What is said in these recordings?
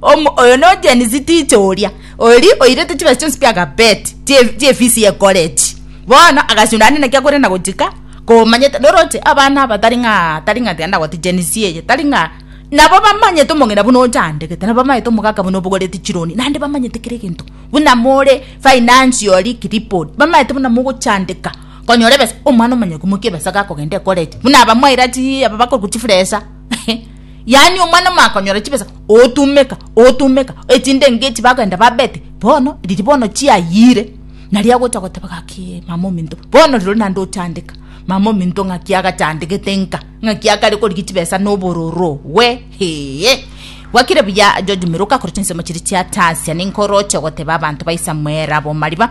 Omo, oyo no Janice teacher oria, ori oirete chibesa chionsi bia carpet, chie chie fees ye college. Bono agasunda ande naki akore na gochika, komanyete noroche abana aba tari ng'a tari ng'a tiga ndagwete Janice eye, tari ng'a nabo bamanyete omong'ina buna ochandegete, nabo bamanyete omogaka buna obogoreti chironi, naende bamanyete kera egento, buna more financially crippled, bamanyete buna mogochandeka konyora ebesa, omwana omonyene komokia ebesa gakogenda ecollege, buna aba mwaira chii aba bakorokwa chifuresa. yaani omwana omakonyora chibesa otumeka otumeka echindenge echi bagenda babete bono riri bono chiayire naria agocha goteba gaki mama ominto bono riro nande ochandeka mama ominto ng'aki agachandegete nka ng'aki akare korigia chibesa na obororo we hee gwakire buya George Miruka korwa chinsemo chiria chia Tasia ninkoroche goteba abanto ba Isamuel abo mariba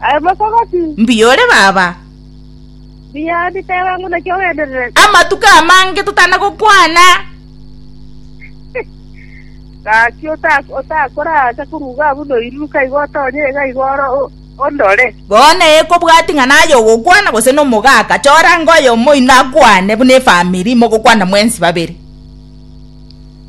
Aye mosogoti. Mbuya ore, Baba. Mbuya ore, teba ng'o naki ogendererete. Amatuko amange totana gokwana. Gaki otakore ase koruga abwo noiruruka igo otonye iga igo oro ondore. Bono ee kobwati ng'a naye ogokwana gose nomogaka chora ng'a oyomo oino akwane buna efamiri mogokwana mwensi babere.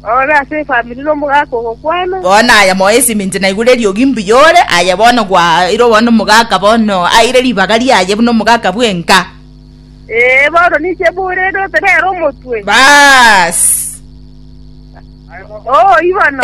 Orore ase efamiri nomogaka ogokwana. Bono aya moyo eseminti naigure eriogi mbuya ore aye bono gwaeirwe bono nomogaka bono aire ribaga riaye buna omogaka bwenka. Ee, bono ninche bore ndote nere omotwe. Baas. Oo, ibono.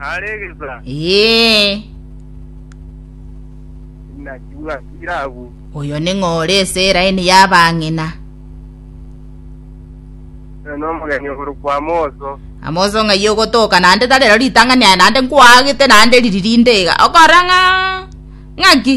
Are egesaa. Ee. Naki bwatira abwo. Oyo ning'o ore ase eraini y'abang'ina? Oyo nomogeni oborokwa Amoso. Amoso ng'ai ogotoka naende tari rero ritang'ani aye naende nkwagete naende riri rinde iga. Okora ng'a ng'aki?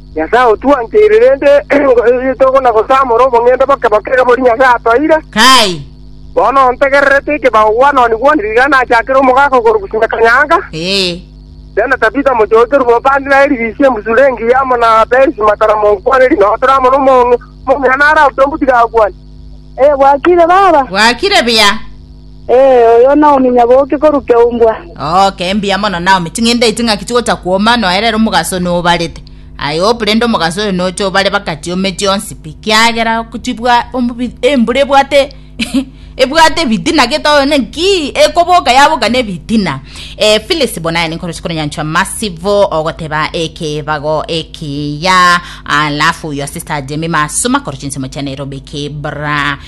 Nyasae otwancheire, rende tokona gosamora obong'ende boke boke iga boria Nyasae atoire. Bono ntegererete ekebago gwanoni gwonsi iga nachakere omogaka o korwa Gusinga Kanyanga, Jane Tabitha mochoki Rubobandi na Elivisia embusuro engiya, amo na Perisi matara monkwane rinotere, amo nomong'ina naro abutombuti gakwane. Bwakire, baba. Bwakire buya. Ee, oyo Naomi nyaboke korwa keumbwa. Oke, mbuya mono Naomi, ching'ende echi ng'aki chigocha kwoma, nonya rero omogaso oyo nobarete. Aye op, rende omogaso oyo nocha obare bakachi ome chionsi pi, kiagera chibwa omobi embura ebwate ebwate ebitina gete oyo ne nkii ekoboka yaboka ne ebitina. Eh, Phyllis bonaye ninkoro chikonyanchwa masivo ogoteba ekebago ekiya. Alafu your sister Jamie masuma koro chinsemo chia Nairobi kibra.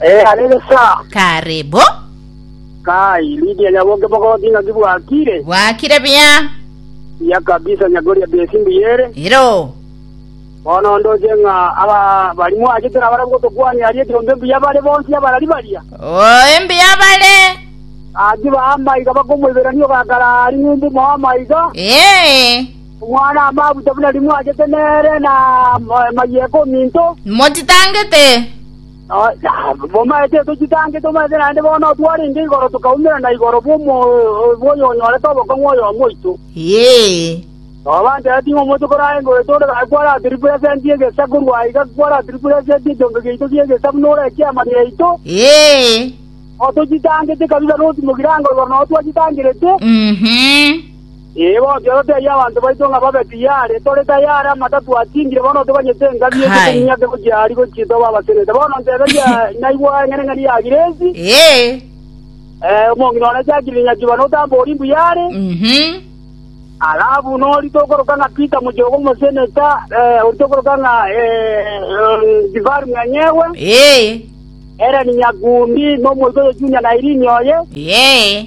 Eh, are gesaa. Kare bo. Kai, Lydia nyaboke bogoti ng'aki bwakire. Bwakire buya. Buya kabisa nyakoria besi mbuya ere. Ero. Bono ndoche ng'a aba bari mwachete nabare gotokwania aria ekiombe mbuya bare bonsi abarari baria. Oh, embuya bare. Aki ba amaiga bakomoiberania ogakara ring'umbu mo amaiga. Eh. Omwana amabuta buna rimwachete nere na ma- mayeko minto. Motitangete. Momaete tochitange, tomaete naende bono twarenge igoro tokaumerana igoro bw'oyonyorete obokong'u oyomo oito. Tobaanchereti ng'a omonto korae ngoro yaito onde gose kwaratirepuresenti egesa korwa aiga kwaratirepuresenti ekiombe giaito gi'egesa buna ore ekiama giaito. Tochitangete kabisa notimokirango igoro nabo twachitangerete. Ee, gokia totebie abanto baito ng'a babe tiyari, tore tayari, amata twachingire, bono toganyete engabi eria Hai. tominyoke gochia aria gochia tobe abasenete. Bono nteberia, naigwa eng'eneng'eni ya Giresi, Ee. eh, omong'ina one Jacqueline Nyakiba notambori mbuya are, Mhm. alafu nori tokoroka ng'a Peter Muchogo omoseneta, eh, ori tokoroka ng'a eh, eh, Jifari Mwenyewe, Ee. Ellen Nyakundi, nomoito oyo Junior Nairini oye, Ee.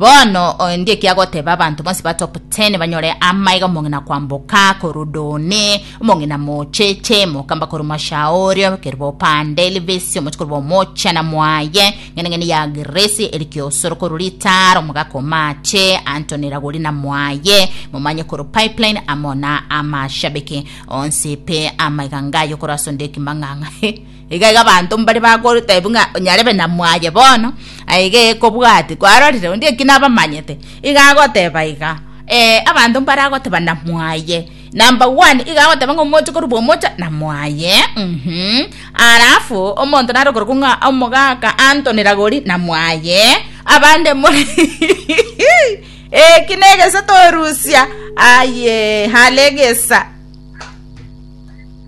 Bono oyo ndie ki agoteba abanto bonsi batoptene banyore amaiga omong'ina kwamboka korwa Doni, omong'ina mocheche, mokamba korwa Mashaori, obekerwe bopande Livisi, omochi korwa bomochana mwaye, ng'eneng'eni ya Girisi, Elikiosoro korwa Litara, omogaka o mache, Antoni Ragorina mwaye, momanye korwa Pipeline, amo na amashabiki onsi pe amaiga ngayo korwa asonde ekimang'ang'a. Iga iga abanto mbare bagotebi ng'a onyarebe na mwaye bono, aiga ekobwati kwarorire onde eki nabamanyete, iga agoteba iga, ee, abanto mbare agoteba na mwaye, number one, iga agoteba ng'a omoche korwa omocha na mwaye, mhm, alafu omonto nare okorokwa ng'a omogaka Anthony Ragori na mwaye, abande more eki negesa torusia, aye, hale egesa.